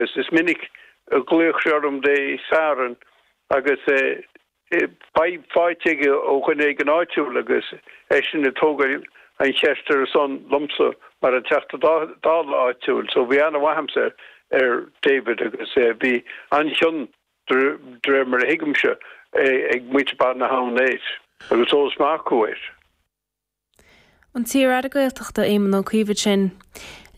Is minic a ghlaodh sé orm Dé Satharn agus fadhb faighte aige ó dhuine éigin áitiúil agus eisean ag tógail an cheist ar a son liomsa mar an Teachta Dála áitiúil. So bhí aithne mhaith a'msa ar David agus bhí an-chion de réir mar a thuigimse ag muintir Bun na hAbhann air agus eolas maith acu air. An t-iar-aire Gaeltachta Éamon Ó Cuív ansin.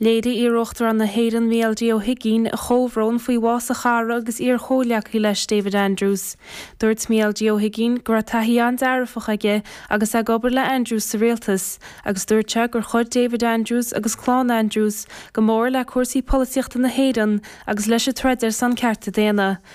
Léirigh iar-Uachtarán na hÉireann Micheál D Ó hUigínn a chomhbhrón faoi bhás a chara agus iar-chomhghleacaí leis David Andrews. Dúirt Micheál D Ó hUigínn go raibh taithí an-dearfach aige agus é ag obair le Andrews sa Rialtas agus dúirt sé gur chuir David Andrews agus clann Andrews go mór le cúrsaí polaitíochta na hÉireann agus leis an troid ar son cearta daonna.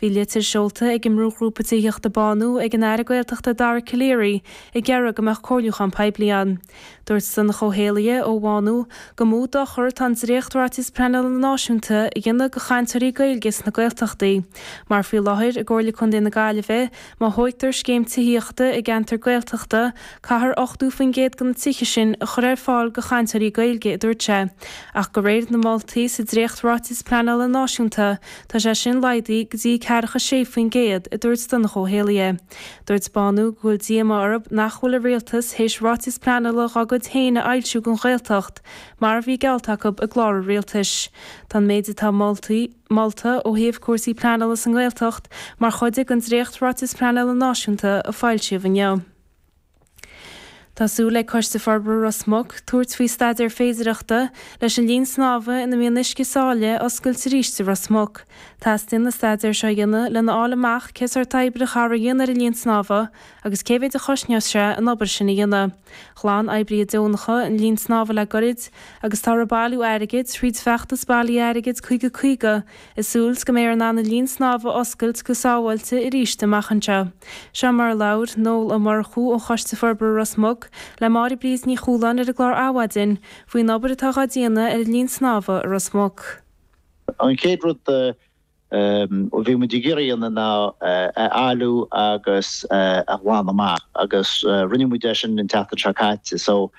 Bhí litir seolta ag an mbrúghrúpa tithíochta Bánú ag an Aire Gaeltachta Dara Calleary ag iarraidh go mbeadh comhairliúchán poiblí ann. Dúirt Donncha Ó hÉallaithe ó Bhánú gur mó dochar atá an dréacht-Ráiteas Pleanála Náisiúnta a dhéanamh do chainteoirí Gaeilge sna Gaeltachtaí mar faoi láthair i gComhairle Contae na Gaillimhe má thóigtear scéim tithíochta i gceantar Gaeltachta caithfear 80% de na tithe sin a chur ar fáil do chainteoirí Gaeilge a dúirt sé ach de réir na moltaí sa dréacht-Ráiteas Pleanála Náisiúnta Tá sé sin laghdaithe go dtí ceathracha a sé faoin gcéad, a dúirt Donncha Ó hÉallaithe. Dúirt Bánú go bhfuil díomá orthu nach bhfuil an rialtas théis ráiteas pleanála dá gcuid féin a fhoilsiú don Ghaeltacht mar a bhí geallta acu i gclár an rialtais. Tá an méid atá moltaí molta ó thaobh cúrsaí pleanála sa nGaeltacht mar chuid den dréacht-Ráiteas Pleanála Náisiúnta a foilsíodh inniu. Tá súil ag Coiste Forbartha Ros Muc tabhairt faoi staidéar féidireachta leis an linn snámha ina mbíonn uisce sáile a oscailt arís i Ros Muc. Teastaíonn an staidéar seo a dhéanamh lena fháil amach cén sórt oibre a chaithfear a dhéanamh ar an linn snámha agus cé mhéad a chosnós sé an obair sin a dhéanamh. Ghlan oibrithe deonacha an linn snámha le goirid agus táthar ag bailiú airgid thríd feachtas bailithe airgid 50 50 Is súil 's go mbeifear in ann an linn snámha a oscailt go sábháilte arís amach anseo. Seo mar a labhair Noel Ó Murchú ó Choiste Forbartha Ros Muc le Máire-Bríd Ní Chualáin ar an gclár Adhmhaidin faoin obair atá dhá déanamh ar an linn snámha i Ros Muc. An chéad rud a bhí muid ag iarraidh a dhéanamh ná é a fholmhú agus a ghlanadh amach agus rinne muid é sin an tseachtain seo caite so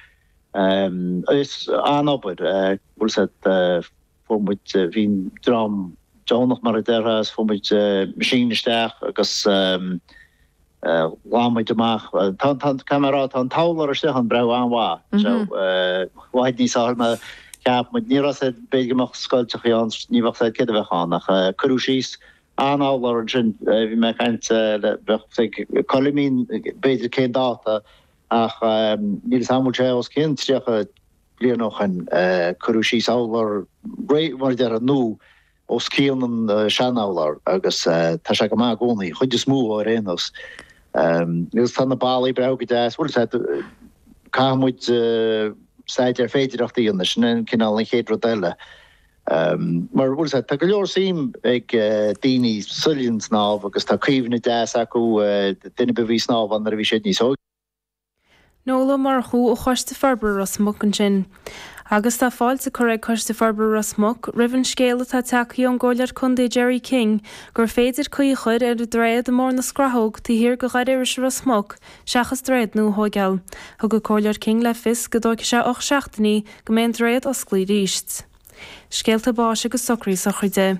is an-obair. fuair muid, bhí an dream deonach mar a déarfá, is fuair muid machine isteach agus ghlan muid amach, tá an, caithfidh mé a rá, tá an t-urlár istigh ann breá an-mhaith, so i bhfad níos fearr ná mar a cheap muid, ní raibh 'fhios a'd, b'fhéidir go mbeadh scoilteachaí ann, ní bheadh 'fhios a'd céard a bheadh ann ach cuireadh síos an t-urlár sin, bhí mé ag caint le, bheadh ag Coilimín b'fhéidir cén dáta ach níl 'fhios a'm an bhfuil sé os cionn 30, bliain ó shin, cuireadh síos urlár réidh, mar a déarfá, nó os cionn an sean-urlár agus tá sé go maith i gcónaí, an chuid is mó ar aon nós. Agus tá na ballaí breá go deas, bhuel, sea, caithfidh muid staidéar féidireachta a dhéanamh, sin é an cineál, an chéad rud eile. Mar, bhuel, sea, tá go leor suim ag daoine sa linn snámh agus tá cuimhne deas acu, daoine a bhí ag snámh ann nuair a bhí siad níos óige, Nuala Ó Murchú ó Choiste Forbartha Ros Muc ansin. Agus tá fáilte curtha ag Coiste Forbartha Ros Muc roimh an scéal atá teacaí ón gComhairleoir Contae Gerry King gur féidir caoi a chur ar an droichead i Muing na Scrathóg taobh thiar de Dhoire Iorrais i Ros Muc seachas droichead nua a thóigeáil. Thug an Comhairleoir King le fios go dtóigfidh sé ocht seachtainí go mbeidh an droichead osclaí arís. Scéalta báis agus socraí sochraide.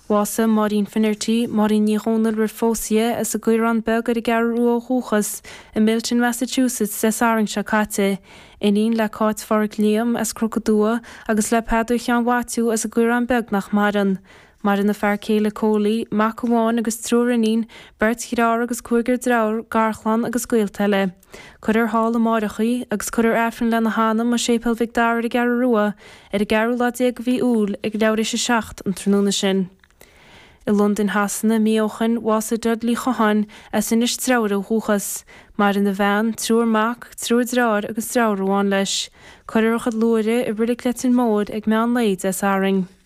Bhásaigh Máirín Finnerty, Máirín Ní Dhomhnaill roimh phósadh di, as an gCaorán Beag ar an gCeathrú Rua ó dhúchas, i Milton, Massachusetts Dé Sathairn seo caite. Iníon le Cáit Phádraic Liam as Cnoc an Dumha agus le Peadar Sheáin Mhaitiú as an gCaorán Beag nach maireann. Maireann a fear céile Coley, mac amháin agus triúr iníon, beirt dhreatháir agus cúigear driofúr, garchlann agus gaolta eile. Cuirfear thall amáireach í, agus cuirfear Aifreann lena hanam i Séipéal Mhic Dara ar an gCeathrú Rua ar an gceathrú lá déag de mhí Iúil ag leathuair théis a seacht an tráthnóna sin. I Londain Shasana, mí ó shoin, bhásaigh Dudley Ó Catháin, as Inis Treabhair ó dhúchas. Maireann a bhean, triúr mac, triúr dreatháir agus driofúr amháin leis. Cuirfear a chuid luaithre i Reilig Leitir Móir ag meán lae Dé Sathairn.